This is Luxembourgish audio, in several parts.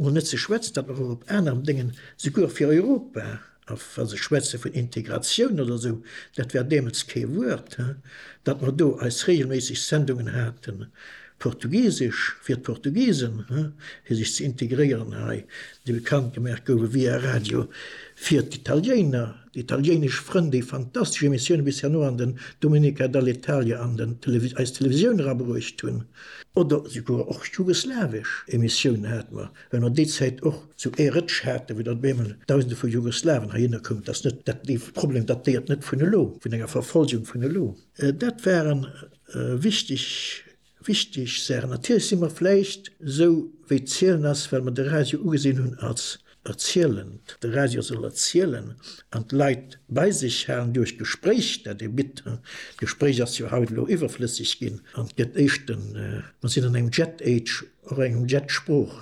An net ze schwätzen, datt mer och op aneren Déngen, souguer fir Europa, a wa se schwätze vun Integratioun oder esou, dat war deemools kee Wuert, datt mer do eis reegelméisseg Sendungen haten, Portugisesch fir d'Portugisen, fir sech ze integréieren hei, déi bekannt gemaach goufen via Radio fir d'Italiéiner. D'italiéinesch Frënn, déi fantastesch Emissioune bis herno an den Domenica dall'Italia an den eis Televisioun erabruecht hunn, oder souguer och jugoslawesch Emissiounen hate mer, well mer déi Zäit och zu ee Rëtsch haten, wou dann op eemol Dausende vu Jugoslawen heihinner koumen. Et ass net dat, dee Problem datéiert net vun elo, vun enger Verfolgung vun elo. Dat waren wichteg. Wichteg Saachen, Natierlech si mer vläicht esou wéi d'Zielen ass, well mer de Radio ugesinn hunn als erzielend. De Radio soll erzielen an d'Leit bei sech halen duerch d'Gespréich, dat e bitt. D'Gespréich ass jo haut elo iwwerflësseg ginn an gëtt éischten, mer sinn an engem Jet-Age, och engem Jet-Sprooch.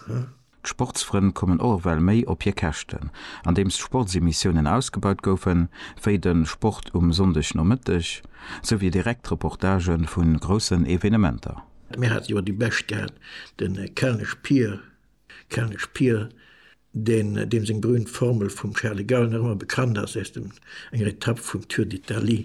D'Sportsfrënn kommen och ewell méi op hir Käschten. Andeems d'Sportsemissiounen ausgebaut goufen, wéi de Sport um Sonndegnomëtteg, sou wéi direkt Reportagë vu groussen Evenementer. Mir hate jo déi Bescht gehat, de Kelnesch Pier, Kelnesch Pier, deen, deem seng berühmt Formel vum Charles de Gaulle nach ëmmer bekannt ass, aus dem, enger Etapp vum Tour d'Italie,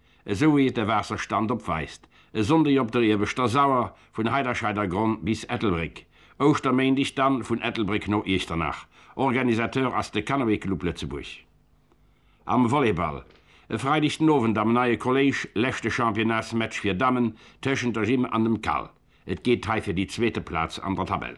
esou wéi et de Waasserstand opweist, e Sonndeg op der Ieweschter Sauer vun Heiderscheidergronn bis Ettelbréck, Ouschterméindeg dann vun Ettelbréck no Iechternach. Organisateur ass de Canoë Club Lëtzebuerg. Am Volleyball, e Freideg den Owend am neie Kolléisch, leschte Championnats-Match fir Dammen tëschent der Gym an dem Cal. Et geet hei fir déi zweete Plaz an der Tabell.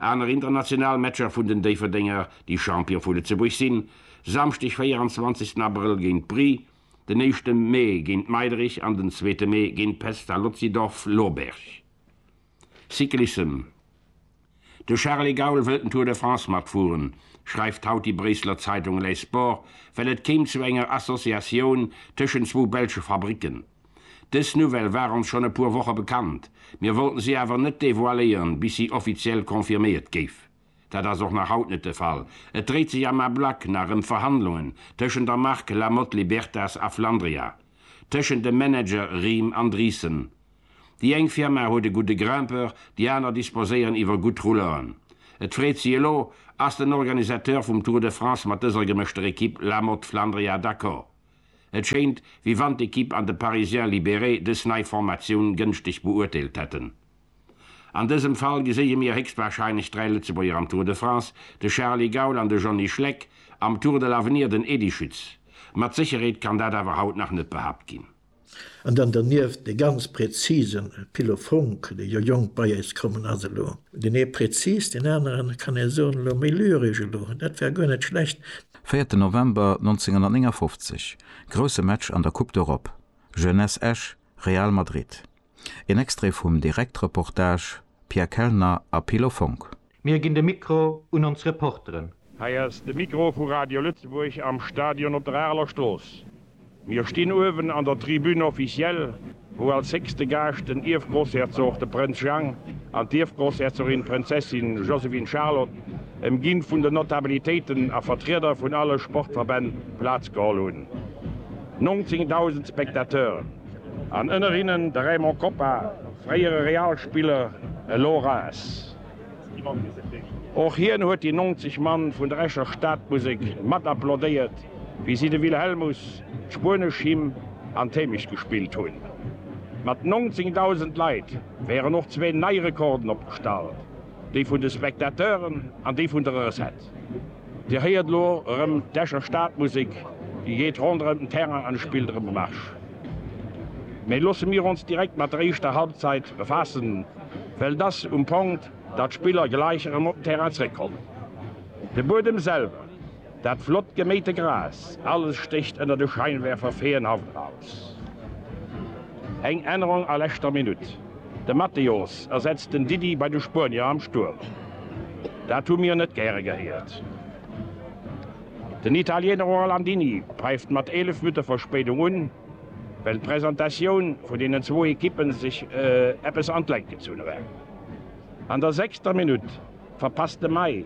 Aner international Matcher vun den Déifferdenger, déi Champion vu Lëtzebuerg sinn, Samschdeg 24 Abrëll géint Bry, den éischte Mee géint Meiderich an den zweete Mee géint Pestalozzi Dorf Loberg. Cyclissem De Charly Gaul wëllt den Tour de France matfueren, schreift haut déi Bréisseler Zeitung Les Sports, well et kéim zu enger Associatioun tëschent zwou belsche Fabricken. Dës Nouvelle war ons schonn e puer Woche bekannt, mir wollten si awer net devoiléieren, bis si offiziell confirméiert géif. Dat ass och nach haut net de Fall, et dréit sech am Ablack nach ëm Verhandlungen tëschent der Mark La Motte Libertas a Flandria, tëschent de Manager Riem an Driessen. Déi eng Firma huet e gudde Grimpeur, déi aner disposéieren iwwer gutt Rouleuren. Et freet si elo, Ass den Organisateur vum Tour de France mat dëser gemëschter Ekipp La Motte Flandria d'accord? Et schéint, wéi wann d'Ekipp an de Parisien libéré dës nei Formatioun gënschteg beurteelt hätten. An dësem Fall geséie mir héchstwahrscheinlech dräi Lëtzebuerger am Tour de France, de Charly Gaul an de Johnny Schleck, am Tour de l'Avenir den Edy Schütz. Mat Sécherheet kann dat awer haut nach net behaapt ginn. An dann dernieft dee ganz präzise Philo Fonck, dee jo jonk bei eis kommen ass elo. Deen ee präzis, deen aneren, kann ee soen, elo méi lyresch elo. Dat war guer net schlecht. Véierten November 1959, grousse Match an der Coupe d'Europe, Jeunesse Esch, Real Madrid. Een Extrait vum Direktreportage, Pierre Kellner a Philo Fonck. Mir ginn de Mikro un ons Reporteren. Hei ass de Mikro vu Radio Lëtzebuerg am Stadion op der Areler Strooss. Mir stinn uewen an der Tribune officielle, wou als héchste Gaascht den Ierfgroussherzog, de Prënz Jang, an d'Ierfgroussherzogin, d'Prinzessin Josephine Charlotte, ëmginn vun den Notabilitéiten a Vertrieder vun alle Sportverbänn, Plaz geholl hunn. 19.000 Spectateuren, an ënner hinnen de Raymond Kopa, fréiere Real-Spiller, elo Reims. Och hien huet déi 90 Mann vun der Escher Stadmusek mat applaudéiert, wéi si de Wilhelmus, d'spuenesch Hym an d'Hémecht gespillt hunn. Mat 19.000 Leit wären och zwee nei Rekorden opgestallt, dee vun de Spectateuren an dee vun der Recette. Dir héiert elo erëm d'Escher Stadmusek, déi geet ronderëm den Terrain an spillt erëm e Marsch. Mee loosse mir ons direkt mat der éischter Halbzeit befaassen. well dass um Ponkt, datt d'Spiller gläich erëm op den Terrain zréckkommen. De Buedem selwer, dat flott geméite Gras, alles stécht ënner de Scheinwerfer feenhaft eraus. Eng Ännerung a leschter Minutt, de Mateos ersetzt den Didi bei de Spuenier am Stuerm. Dat hu mir net gäre gehéiert. Den Italiener Orlandini päift mat 11 Minutte Verspéidung un. well d'Presentatioun vun deenen zwou Ekippen sech eppes an d'Längt gezunn huet. An der sechster Minutt verpasst de May,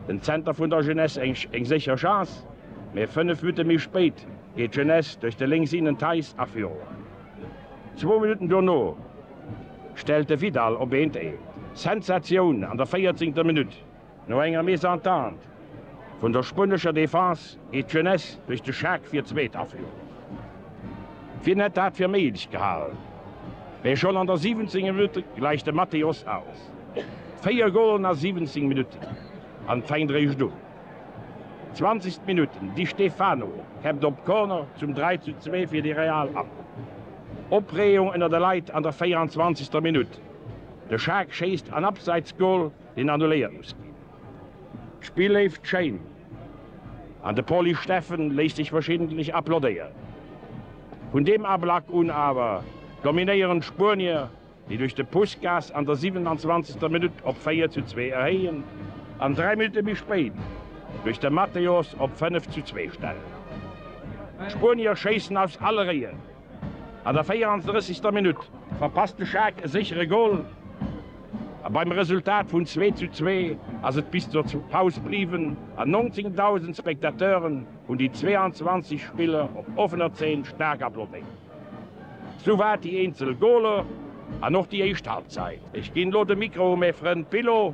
den Zenter vun der Jeunesse, eng sécher Chance, mee fënnef Minutte méi spéit geet d'Jeunesse duerch de lénks Innen Theis a Führung. Zwou Minutten dono stellt de Vidal op 1 d'Eent. Sensatioun an der véierzéngter Minutt! No enger Mésentente vun der spuenescher Defense geet d'Jeunesse duerch de Schaak fir d'zweet Aféierung. Wien hätt dat fir méiglech gehal? Mee schonn an der 17 Minutt gläicht de Mateos aus. Véier Golen a 17 Minutten, an et fänkt eréischt un. 20. Minutt, Di Stefano käppt op Corner zum 3 zu 2 fir de Real an. Opreegung ënner de Leit an der 24. Minutt, de Schaak schéisst an Abseitsgol. Deen annuléiert muss ginn. D'Spill léift schéin an de Poli Steffen léisst sech verschiddentlich applaudéieren. Vun deem Ablack un awer dominéieren d'Spuenier, déi duerch de Puskas an der 27. Minutt op 4 zu 2 erhéien an 3 Minutte méi spéit duerch de Mateos op 5 zu 2 stellen. D'Spuenier schéissen aus alle Réien. An der 34. Minutt verpasst de Schaack e séchere Gol a beim Resultat vun 2 zu 2 ass et bis zur Paus bliwwen a 19.000 Spectateuren hunn déi 22 Spiller op offener Zeen staark applaudéiert. Souwäit déi eenzel Goler an och déi éischt Halbzeit. Ech ginn elo de Mikro u mä Frënd Billo.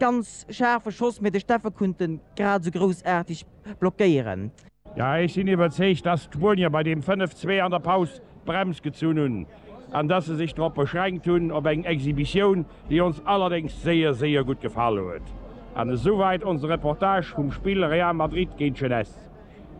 Ganz scharfen Schoss, mee de Steffen kunnt en grad esou groussartig blockéieren. Jo, ech sinn iwwerzeegt, dass d'Spuenier bei deem 5, 2 an der Paus d'Brems gezunn hunn an dass se sech drop beschränkt hunn op eng Exhibitioun, déi ons allerdéngs séier, séier gutt gefall huet. An esouwäit onse Reportage vum Spill Real Madrid géint Jeunesse.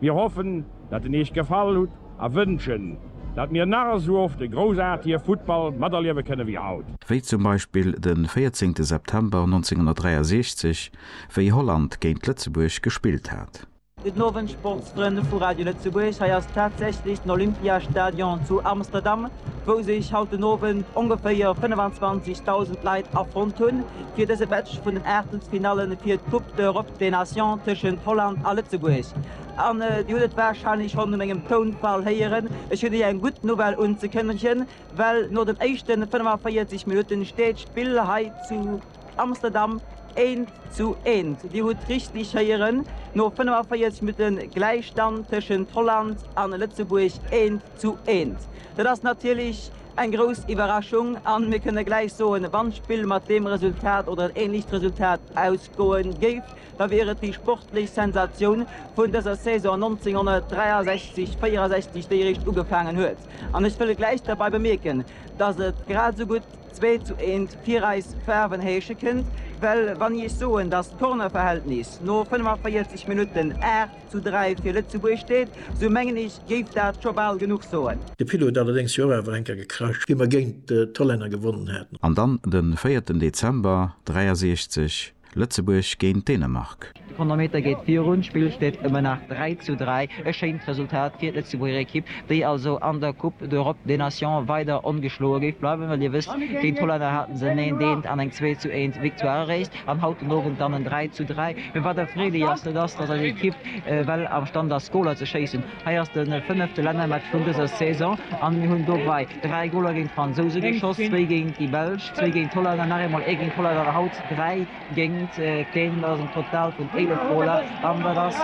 Mir hoffen dat en Eech gefall hutt a wënschen dat mir nach esou oft e groussartige Futtball materliewe kënne wéi haut. Wéi zum Beispill de 14 September 1963, wéi Holland géint Lëtzebuerg gespillt hat. Gudden Owend Sportsfrënn vu Radio Lëtzebuerg, hei ass tatsächlech den Olympiastadion zu Amsterdam, wou sech haut den Owend ongeféier 25.000 Leit afonnt hunn, fir dëse Match vun den Aachtelsfinalle fir d'Coupe d'Europe des Nations tëschent Holland a Lëtzebuerg. An Dir hutt et wahrscheinlech schonn u mengem Tounfall héieren, ech hunn Iech eng gutt Nouvelle unzekënnegen, well no den éischten 45 Minutten steet d'Spill hei zu Amsterdam eent zu eent, Dir hutt richtig héieren, no 45 Minutten Gläichstand tëschent Holland a Lëtzebuerg, eent Zu eent. Dat ass natierlech eng grouss Iwwerraschung a mir kënne gläich soen, wann d'Spill mat deem Resultat oder en ähnlecht Resultat ausgoe géif, da wier et déi sportlech Sensatioun vun dëser Saison 1963, 64, déi eréischt ugefaangen huet. An ech wëll gläich derbei bemierken, dass et grad esou gutt zwee zu eent fir eis Faarwen heesche kënnt, well wann Iech soen, dass d'Kornerverhältnis no 45 Minutten 8 zu 3 fir Lëtzebuerg steet, sou mengen ech géif dat scho bal genuch soen. De Pilot huet allerdéngs jo och awer enker gecrashed, wéi mer géint d'Hollänner gewonnen haten. An dann de véierten Dezember 63, Lëtzebuerg géint Dänemark. De Chronometer geet virun, d'Spill steet ëmmer nach 3 zu 3. E schéint Resultat fir d'Lëtzebuerger Ekipp, déi also an der Coupe d'Europe des Nations weider ongeschloe géif bleiwen, well Dir wësst, géint d'Hollänner hate se en Eent-Eent an eng Zwee-zu-Eent-Victoire eréischt. An haut den Owend dann en 3 zu 3. Mee wat erfreelech ass, dat ass, datt eis Ekipp well amstand ass, Goler ze schéissen. Hei ass de fënnefte Lännermatch vun dëser Saison an mir hunn dobei 3 Goler géint d'Fransouse geschoss, zwéi géint déi Belsch, zwéi géint d'Hollänner, nach eemol ee géint d'Hollänner an haut 3 géint d'Dänen. Dat ass en Total vun 11 Goler an dat ass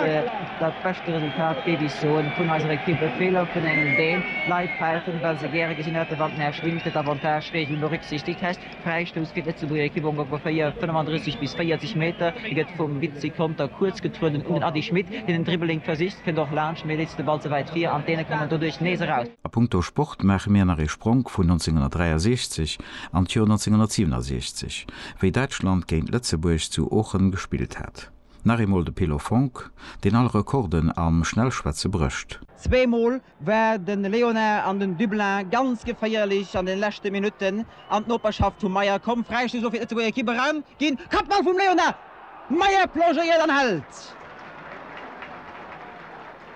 dat beschte Resultat, géif ech soen, vun eiser Ekipp. E Feeler vun engem Dän, d'Leit päifen, well se gäre gesinn hätten, wann d'Mär Schwinn fir d'Avantage-Reegel berücksichtegt hätt. Fräistouss fir d'Lëtzebuerger Ekipp ongeféier 35 bis 40 Meter. Hie gëtt vum Vizi Conter kuerz getrueden un den Ady Schmit, deen en Dribbling versicht, kënnt och laanscht, mee leet de Ball ze wäit vir an d'Däne kommen doduerch nees eraus. A punkto Sport maache mir nach ee Spronk vun 1963 an d'Joer 1967, wéi Däitschland géint Lëtzebuerg zu Oochen gespillt hat. Nach eemol de Pilo Fonck, deen all Rekorden am Schnellschwätze brécht. Zweemol war de Léonard an den Dublin ganz geféierlech an den leschte Minutten an d'Noperschaft vum Meyer komm. Fräistoss soll fir d'Lëtzebuerger Ekipp eraus ginn. Kappball vum Léonard, Meyer plongéiert an hält.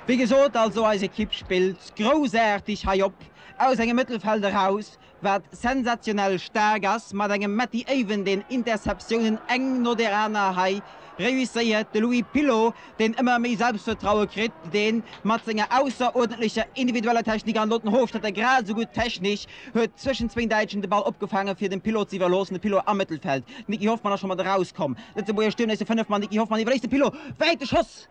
Wéi gesot, also eis Ekipp spillt groussaarteg hei op, aus engem Mëttelfeld eraus, wat sensationell staark ass, mat engem Matty Aven deen Interceptiounen eng no der aner hei reusséiert, de Louis Pilot deen ëmmer méi Selbstvertraue kritt, deen mat senger ausseruerdentlecher individueller Technik an elo den Hofstetter grad esou gutt technesch, huet zwëschen zwéin Däitschen de Ball opgefaange fir dem Pilot ze iwwerloossen, de Pilot am Mëttelfeld, Nicky Hoffmann ass scho mat erauskomm, Lëtzebuerger Stuerm, nächste Fënnef, mat Nicky Hoffmann iwwerléisst de Pilot, wäite Schoss!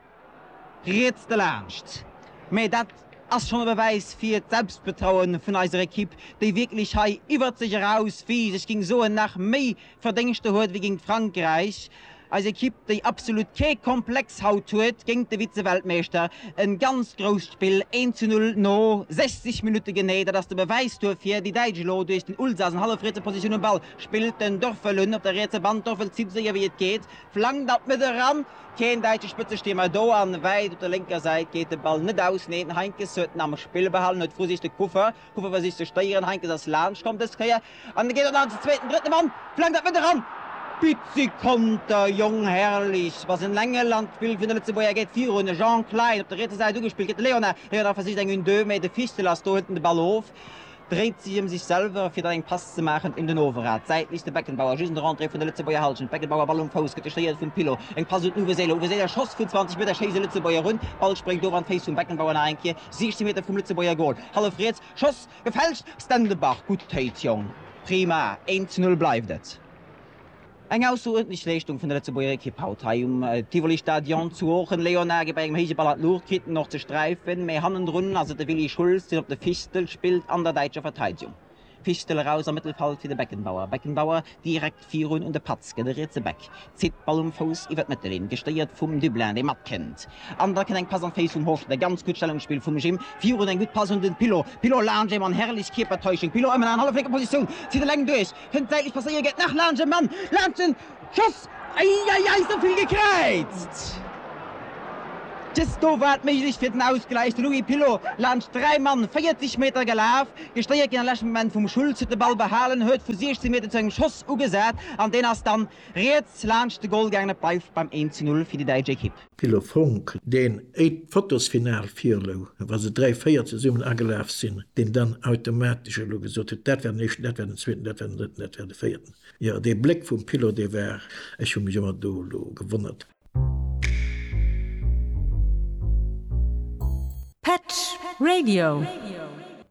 Riets delaanscht. Mä dat ass schonn e Bewäis fir d'Selbstbetrauen vun eiser Equipe, déi wierklech hei iwwert sech eraus wiischt, ech géing soen nach méi Verdéngschter huet wéi géint Frankräich, eis Equipe déi absolut kee Komplex haut huet géint de Vize-Weltmeeschter. E ganz grousst Spill, een zu null no 60 Minutte genee, dat ass de Bewäis duerfir. Déi Däitsch elo duerch den Ulsas an hallefrietse Positioun um Ball spillt, den Dorfelun op der rietse Band, Dorfel zitt esou séier wéi et geet, Flankt an d'Mëtt eran, keen däitsche Spëtzestiermer do, an wäit op der lénker Säit geet de Ball net aus. Neen, Heinkes huet en am Spill behalen, huet versicht de Kuffer, Kuffer versicht ze stéieren, Heinkes ass laanscht komm dës Kéier, an geet dann an den zweeten, drëtten Mann, flankt an d'Mëtt eran, Pizzi Konter, Jong Herrlichs, wa se en engen an d'Spill vun de Lëtzebuerger geet virun, Jean Klein op der rietser Säit ugespillt, gëtt de Leonard, Leonard versicht eng Une-deux, mee de Fichtel ass do, hëlt en de Ball of, dréit sech ëm sech selwer fir dann eng Pass ze maachen un den Overrad, d'Säit liicht de Beckenbauer just un der Entrée vun der Lëtzebuerger Hallschent, d'Beckenbauer Ball um Fouss, gëtt gestéiert vum Pilot, eng Pass un den Uwe Seeler, Uwe Seeler Schoss vun 20 Meter, schéisst e Lëtzebuerger run, Ball spréngt of an d'Féiss vum Beckenbauer, nach eng Kéier 16 Meter vum Lëtzebuerger Goal, hallef riets, Schoss gefälscht, Stendebaach, gutt Téit Jong, prima, 1 zu 0 bleift et. Eng ausseruerdentlech Leeschtung vun der Lëtzebuerger Ekipp haut hei um Tivoli Stadion zu Oochen. Léonard geet bei engem héije Ball an d'Luucht, kritt en och ze sträifen, mee hannendrun ass et de Willy Schulz, deen op de Fistel spillt an der däitscher Verteidegung. Fistel eraus am Mëttelfeld fir de Beckenbauer. Beckenbauer direkt virun un de Patz, gëtt e rietse Back, zitt d'Ball um Fouss iwwer d'Mëttelinn, gestéiert vum Dublin, dee matkënnt an da kënnt eng Pass an d'Féiss vum Horschler. Ganz gutt Stellungsspill vum Jim virun, eng gutt Pass un den Pilot. Pilot laanscht een Mann, herrlech Kierpertäuschung, Pilot ëmmen an halleflénker Positioun, zitt eleng duerch, Kënnt säitlech passéiert, geet nach laanscht e Mann, laanscht de Schoss, eieiei esou vill gekräizt. Just do war et méiglech fir den Ausgläich, de Louis Pilot laanscht 3 Mann 40 Meter gelaf, gestéiert ginn am leschte Moment vum Schulz, huet de Ball behalen, huet vu 16 Meter zu engem Schoss ugesat an deen ass dann riets laanscht de Gol gaangen. Et bleift beim 1 zu 0 fir déi däitsch Ekipp. Ville Funk, deen éit d'Fotos final virlou, wa se dräi, véier zesummen agelaf sinn, deen dann automatesch elo gesot huet, dat war den éischten, dat war den zweeten, dat war den drëtten, dat war de véierten. Jo, dee Bléck vum Pilo, dee war, ech hu mech ëmmer do elo gewonnert. Petsch Radio.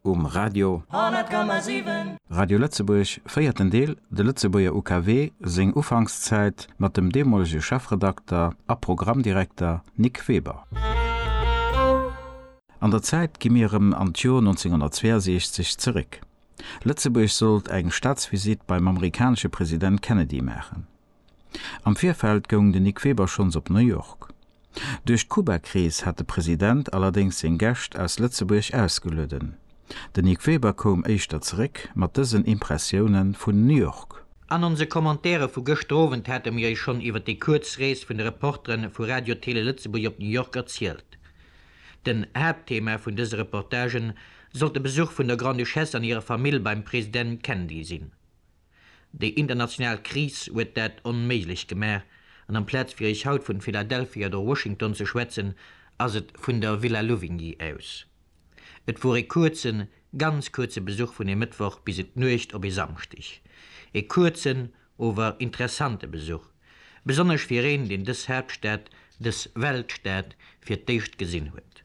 um Radio 100,7. Radio Lëtzebuerg, véierten Deel, De Lëtzebuerger UKW, seng Ufankszäit, mat dem deemolege Chefredakter a Programmdirekter Nic Weber. An der Zäit gi mir erëm an d'Jor 1962 zeréck. Lëtzebuerg sollt eng Staatsvisitt beim amerikanesche President Kennedy maachen. Am Virfeld goung den Nic Weber schonns op New York. Duerch d'Kuba-Krees hat de President allerdéngs seng Gäscht aus Lëtzebuerg ausgelueden. Den Nic Weber koum éischter zeréck mat dësen Impressioune vun New York. An onse Commentaire vu gëschter Owend hate mir iech schonn iwwer déi kuerz Rees vun de Reportere vu Radio Télé Lëtzebuerg op New York erzielt. Den Haaptthema vun dëse Reportagen sollt de Besuch vun der Grande-Duchesse an hirer Famill beim President Kennedy sinn. Déi international Kris huet dat onméiglech gemaach, an amplaz fir iech haut vun Philadelphia oder Washington ze schwätzen, ass et vun der Villa Louvigny aus. Et wor ee kuerzen, ganz kuerze Besuch vun ee Mëttwoch bis en d'Nuecht op ee Samschdeg. Ee kuerzen, ower interessante Besuch, besonnesch fir een, deen dës Haaptstad, dës Weltstad fir d'éischt gesinn huet.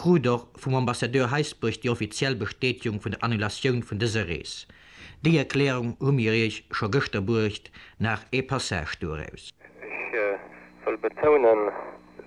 krut och vum Ambassadeur Heisbourg déi offiziell Bestätegung vun der Annulatioun vun dëser Rees. Déi Erklärung hu mir Iech scho gëschter bruecht, nach ee Passage doraus. Ech wëll betounen,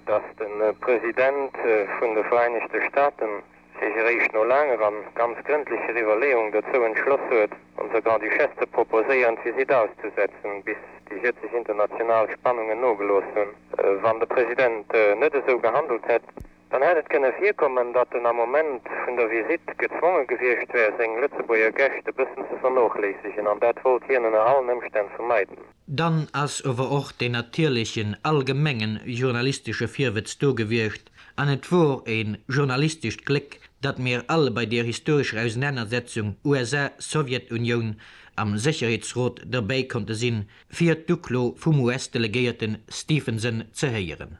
dass de President vun de Vereinigte Staaten sech eréischt no laanger an ganz grëndlecher Iwwerleeung dozou entschloss huet, onser Grand-Duchesse ze proposéieren, d'Visite auszusetzen, bis déi jëtzeg international Spannungen nogelooss hunn. Wann de President net esou gehandelt hätt, Dann hätt et kënne virkommen, datt en am Moment vun der Visitt gezwonge gewiescht wär, seng Lëtzebuerger Gäscht e bëssen ze vernochléissegen, an dat wollt hien ënner allen Ëmstänn vermeiden. Dann ass ower och deen natierlechen allgemengen journalistesche Virwëtz do gewiescht, an et wor e journalistescht Gléck, datt mir all bei deer historescher Ausenanersetzung USA-Sowjetunioun am Sécherheetsrot derbäi konnte sinn, fir d'Uklo vum US-Delegéierten Stephenson ze héieren.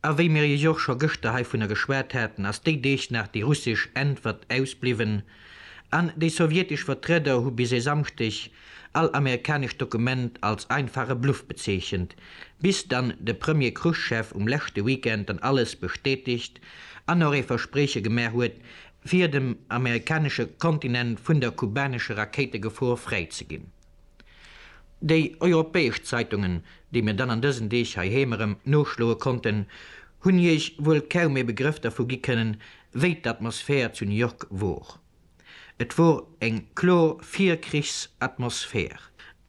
A wéi mir jo scho gëschter heivunner geschwat haten, ass déi Deeg nach déi russesch Äntwert ausbliwwen an déi sowjetesch Vertrieder hu bis e Samschdeg all amerikanescht Dokument als einfache Bluff bezeechent, bis dann de Premier Chruschev um leschte Weekend dann alles bestätegt an och ee Versprieche gemaach huet, fir dem amerikanesche Kontinent vun der kubanesche Rakéitegefor fräi ze ginn. Déi europäesch Zeitungen, déi mir dann an dësen Deeg heiheem erëm noschloe konnten, hunn Iech wuel kaum ee Begrëff dervu gi kënnen, wéi d'Atmosphär zu New York wor. Et wor eng kloer Virkrichsatmosphär.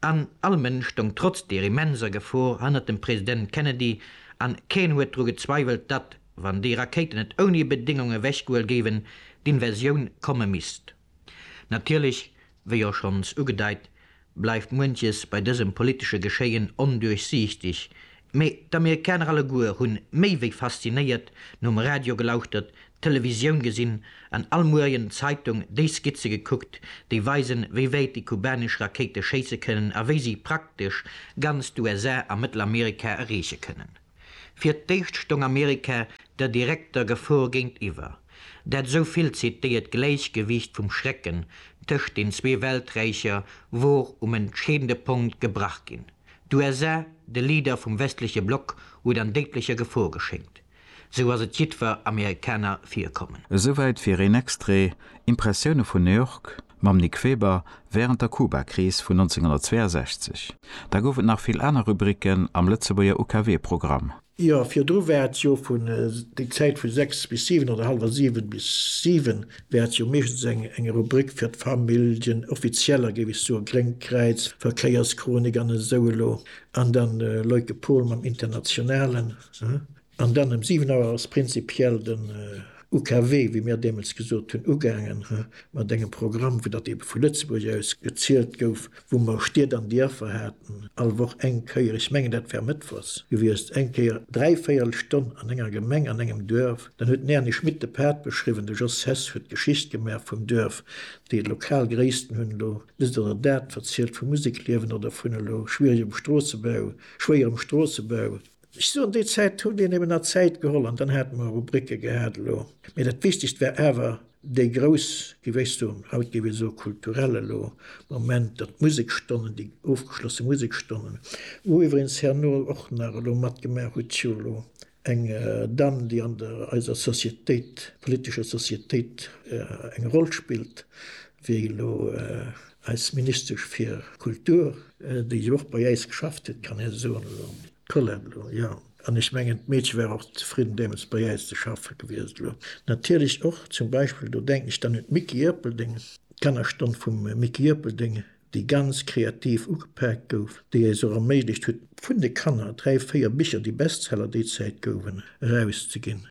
An all Mënsch stong trotz deer immenser Gefor hannert dem President Kennedy, an keen huet dru gezweiwelt, datt, wann déi Rakéiten net ouni Bedéngung ewechgehuel géiwen, d'Invasioun komme misst. Natierlech, wéi jo schonns ugedeit, bleift muenches bei dësem politesche Geschéien onduerchsiichteg, mee d'Amerikaner alleguer hunn méi wéi faszinéiert nom Radio gelauschtert, d'Televisioun gesinn an all Muerjen d'Zeitung déi Skizze gekuckt, déi weisen, wéi wäit déi kubanesch Rakéite schéisse kënnen a wéi si praktesch ganz d'USA a Mëttelamerika erreeche kënnen. Fir d'éischt stong Amerika der direkter Gefor géintiwwer, dat esou vill zitéiert Gläichgewiicht vum Schrecken tëscht den zwee Welträicher wor um entscheedende Punkt gebrach ginn. D'USA, de Leader vum westleche Block, huet an déidlecher Gefor geschéngt, sou ass et jiddwer Amerikaner virkommen. Esouwäit fir een Extrait, Impressioune vun New York, mam Nic Weber wärend der Kubakris vun 1962. Da gouf et nach vill aner Rubriken am Lëtzebuerger UKW-Programm. Jo, virdru war et jo vun, déi Zäit vu sechs bis siwen oder hallwer siwen bis siwen, war et jo meeschtens eng Rubrik fir d'Familljen, offizieller, géif ech soen, Gréngt Kräiz, Verkéierschronik an esou elo. An dann Leuke Pol mam Internationalen. An dann ëm 7 Auer ass prinzipiell den UKW, wéi mir deemools gesot hunn, ugaangen mat engem Programm, wou datt eebe vu Lëtzebuerg aus gezielt gouf, wou mer Stied an Dierfer haten, all Woch eng Kéier, ech mengen dat war mëttwochs gewiescht, eng Kéier dräi Véierelstonn an enger Gemeng, an engem Duerf. Dann huet den Erny Schmit de Pad beschriwwen, de Jos Hess huet d'Geschicht gemaach vum Duerf, déi lokal Gréissten hunn elo dëst oder dat verzielt vum Musekliewen oder vun elo schwieregem Stroossebau, schwéierem Stroossebau. Ech soen, déi Zäit huet een eben nach Zäit geholl an dann hate mer Rubricke gehat elo. Mee dat Wichtegst war awer déi grouss, wéi wéist du, haut géif ee soe kulturell elo, Moment, datt d'Musekstonnen, déi ofgeschlosse Musekstonnen, wou iwweregens herno och nach elo matgemaach huet jo elo eng Dame, déi an der eiser Societéit, politescher Societéit eng Roll spillt, wéi elo eis Ministesch fir Kultur, déi jo och bei äis geschafft huet, kann ee soen, elo d'Colette elo, jo. An ech mengen, d'Meedche war och zefridden deemools bei äis ze schaffe gewiescht. Elo natierlech och zum Beispill, do denken ech dann un d'Micky Ierpeldeng, d'Kannerstonn vum Micky Ierpeldeng, déi ganz kreativ ugepaakt gouf, déi eis och erméiglecht huet, vun de Kanner dräi, véier Bicher, déi Bestseller déi Zäit gouwen, erauszeginn.